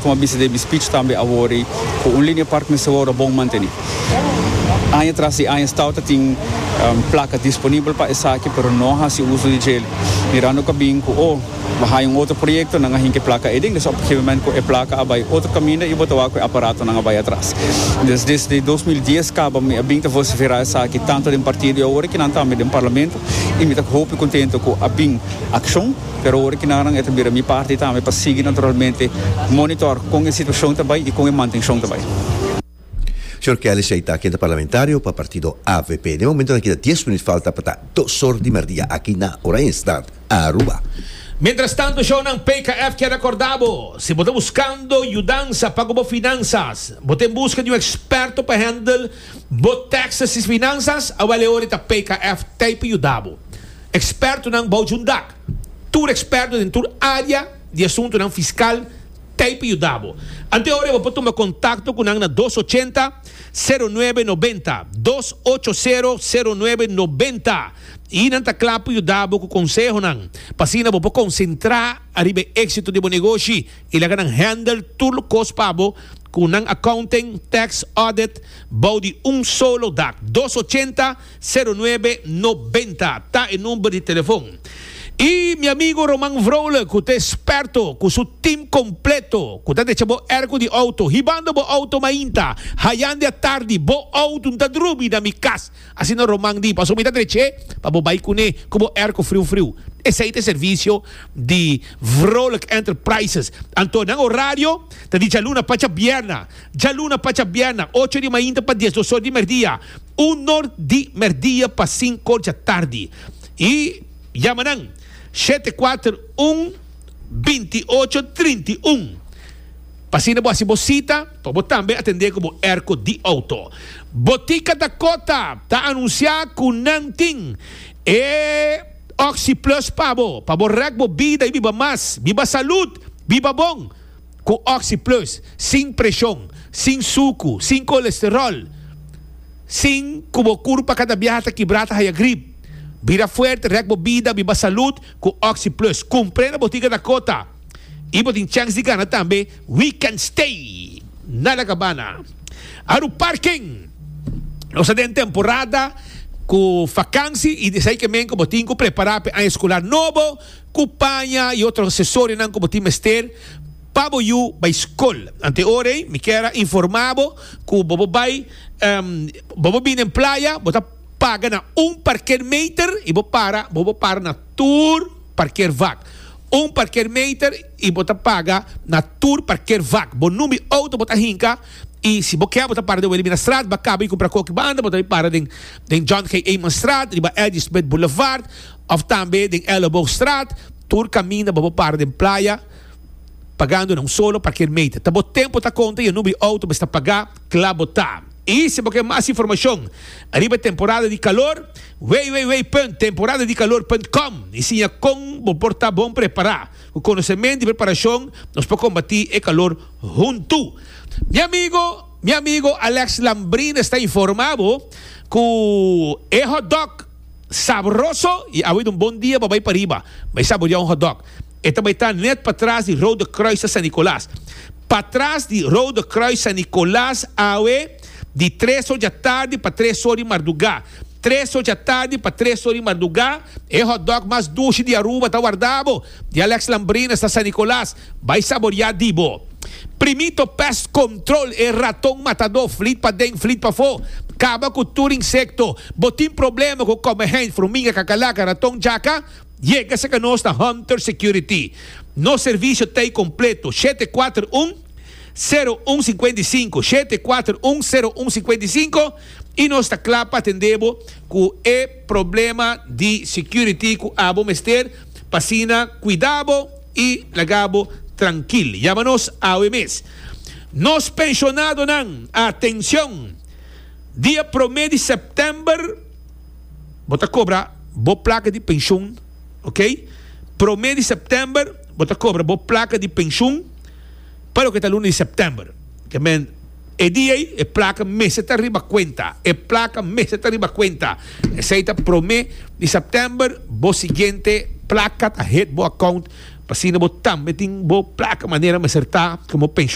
Como a bisa den mi speech tambe awor ei, cu un linea park mester wor a bon manteni. Aña tras di aña Stau ta tin placa disponibel pa esaki pero no a haci uso di djel, mirando cu a bin cu o bo haya un otro proyecto nan a hinca e placa eden, desha op gegeven moment cu e placa a bay otro caminda y bo ta wak cu e aparatonan a bay atras. Desde dos mil dies caba mi a bin ta vocifera esaki tanto den partido y awor aki nan tambe den Parlamento y mi ta hopi contento cu a bin accion. Pero ora ki naran e ta bira mi parti tambe pa sigui naturalmente monitor kon e situashon ta bai i kon e mantenshon ta bai. Señor Kellis ei ta kende parlamentario pa partido avp. Den momentonan kita dies minut falta pa ta dos or di merdia aki na Oranjestad, Aruba. Mientrastanto, shownan PKF kier rekorda bo, si bo ta buskando yudansa pa ku bo finansas, bo ta en buska di un eksperto pa hendel bo tèkses i finansas, awèl e ora ta PKF tei pa yuda bo. Ekspertonan bou djun dak. Tur eksperto den tur área di asuntunan fiskal ta ei pa yuda bo. Ante ora e bo por tuma kontakto ku nan na dos ochenta, sero nuebe nobenta, dos ocho sero, sero nuebe nobenta, i nan ta kla pa yuda bo ku konsehonan pa asina bo por konsentrá ariba e éksito di bo negoshi i laga nan handle tur lokos pa bo ku nan accounting, tax, audit bou di un solo dak. Dos ochenta. Sero nuebe nobenta ta e number di telefon. Y mi amigo Roman Vrolijk cu ta experto cu su team completo cu ta decha bo ergo di auto hibando bo auto mainta hayandi atardi bo auto n'ta drubi na mi cas. Asina Roman di paso mi ta dreche pa bo bay cune cu bo ergo friu friu. Esey ta e servicio di Vrolijk Enterprises. Anto nan horario ta di djaluna pacha bierna. Djaluna pacha bierna ocho di mainta pa diesdos or di merdia. Un nor di merdia pa sinko dja tardi. Y yama nan, shete kuater un binti ocho trinta i un. P'asina bo hasi bo sita pa bo tambe atendé ku bo erko di outo. Botika Dakota ta anunsiá ku nan tin e Oxi Plus pa bo, pa bo rèk bo bida i biba mas, biba salud, biba bon. Cu Oxy Plus, sin presion, sin sucu, sin colesterol, sin cu bo curpa cada biaha ta kibra ta haya grip. Bira fuerte, rek bo bida, biba salud cu Oxy Plus. Cumpre na botica Dakota y bo tin chance di gana tambe weekend stay na La Cabana. Aru Parking, Nos ta den temporada cu vakansi y esey ke men cu bo tin cu prepara pe aña escolar nobo, Cu paña y otro accesorianan cu bo tin mester pa bo yu bay scol. Anteor ey mi kier a informa bo cu bobo bay, bobo bin den playa, bo ta paga na un parker meter y bo para, bobo para na tur parker vak. Un parker meter y bo ta paga na tur parker vak. Bo numbi auto bo ta hinca y si bo kier bo ta para den Wilhelminastraat, Bacabo y Cumpracoque banda, bo ta bay para den John G. Amenstraat, riba Ladysmith Boulevard, Of tambe den Elleboogstraat, tur kaminda bo bo para den playa pagando na un solo parkeermeter. Ta bo tempo ta konta i a number di outo bo esta pagá, kla bo ta. I si bo ke mas informashon ariba e temporada di kalor, www.temporadadikalor.com i siña kon bo por ta bon prepará. Ku konosementu i preparashon nos por kombatí e kalor huntu. Mi amigo, mi amigo Alex Lambrina sta informá bo ku e hotdog, Sabroso y awe ta un bon dia pa bay pariba bay saborea un hotdog. E ta bay ta net patras di Rode Kruis ta San Nicolas. Patras di Rode Kruis San Nicolas awe di tres or dja tardi pa tres or di marduga. Tres or dja tardi pa tres or di marduga e hotdog mas dushi di Aruba ta warda bo. Di Alex Lambrines na San Nicolas, Bai saboriá di bo. Primito Pest Control, e raton matadó, flit pa den, flit pafó. Kaba ku tur insekto. Bo tin problema ku kòmèhènt, furmiga, kakalaka, raton, djaka? Yega serka nos na Hunter Security. Nos servisio ta ei kompleto, shete kuater un, sero un singkuenta i sinku, shete kuater un, sero un singkuenta i sinku, i nos ta kla pa atendé bo ku e problema di security ku abo mester. P'asina kuidá bo i laga bo trankil. Yama nos awe mes. Nos penshonadonan, atenshon! Dia promé di sèptèmber bo ta kobra bo plaka di penshun, oke. Promé di sèptèmber bo ta kobra bo plaka di penshun pa loke ta luna di sèptèmber. E dia ei, e plaka mester ta riba kuenta. E plaka mester ta riba kuenta. Esei ta promé di sèptèmber. Bo siguiente plaka ta hit bo akount pa asina bo tambe tin bo plaka manera mester ta komo penshonarnan.